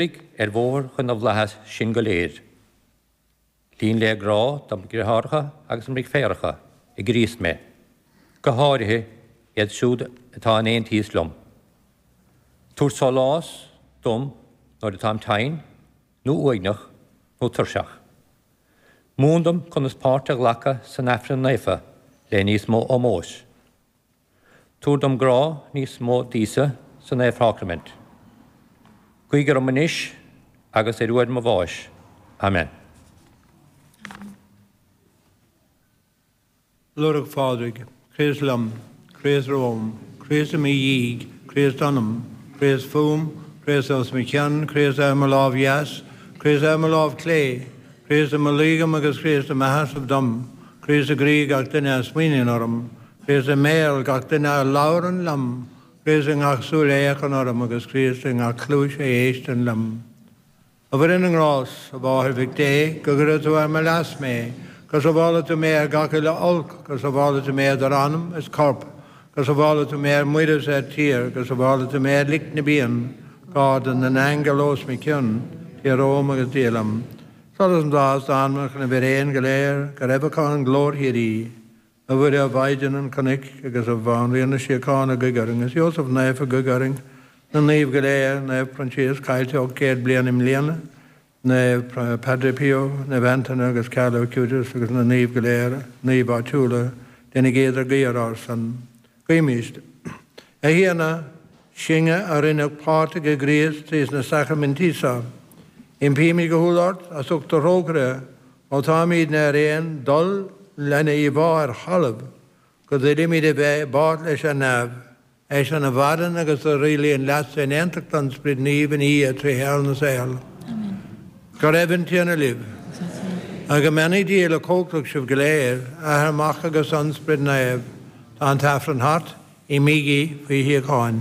ar bhóthar chun na bhflaitheas sin go léir. Líon le grá dom dhriotháracha agus dom dhriféaracha i gCríost mé, go háirithe iad siúd atá in aontíos liom. Tabhair sólás dom nuair atáim tinn, nó uaigneach, nó tuirseach. Múin dom conas páirt a ghlacadh san Aifreann Naofa le níos mó ómóis. Tabhair dom grá níos mó d'Íosa sa Naomhshácraimint. Guigh orm anois agus ar uair mo bháis. Amen. Lúireach Phádraig, Críost liom, Críost romham, Críost i mo dhiaidh, Críost ionam, Críost fúm, Críost os mo chionn, Críost ar mo lámh dheas, Críost ar mo lámh chlé, Críost i mo luí dhom agus Críost i mo sheasamh dom, Críost i gcroí gach duine a smaoiníonn orm. Críost i mbéal gach duine a labhrann liom, Críost i ngach súil a fhéachann orm, agus Críost i ngach cluais a éisteann liom. A Mhuire na nGrás, a Mháthair Mhic Dé, go gcuire tú ar mo leas mé, go sabhála tú mé ar gach uile olc, go sabhála tú mé idir anam is corp, go sabhála tú mé ar muir is ar tír, go sabhála tú mé ar lic na bpian, garda na n-aingeal os mo chionn, Dia romham agus Dia liom. Solas na bhflaitheas d'anmacha na bhfíréan go léir, go raibh acu an ghlóir shíoraí. A Mhuire Mhaighdean Chnoic agus a bhanríon na síochána guigh orainn, a Iósaf naofa guigh orainn, na naoimh go léir, Naomh Proinsias, caillte 800 bliain i mbliana, Naomh Padre Pio, Naomh Antaine agus Carlo Acutis agus na naoimh go léir, naoimh áitiúla, déanaigí idirghuí ar ár son. Guímis. A Thiarna, sinne, a rinneadh páirteach i gCríost trís na sacraimintí so, impímid go humhal ort, as ucht do thrócaire, ó táimídne ar aon dul lena íomhá ar thalamh, go dtuillimid a bheith i bpáirt leis ar neamh, eisean a mhaireann agus a rialaíonn leatsa in aontacht an Sprid Naoimh ina Dhia trí shaol na saol. Amen. Go raibh an Tiarna libh. Agus go mbeannaí Dia uilechumhachtach sibh go léir, Athair, Mac agus An Sprid Naomh. Tá an tAifreann thart, imígí faoi shíocháin.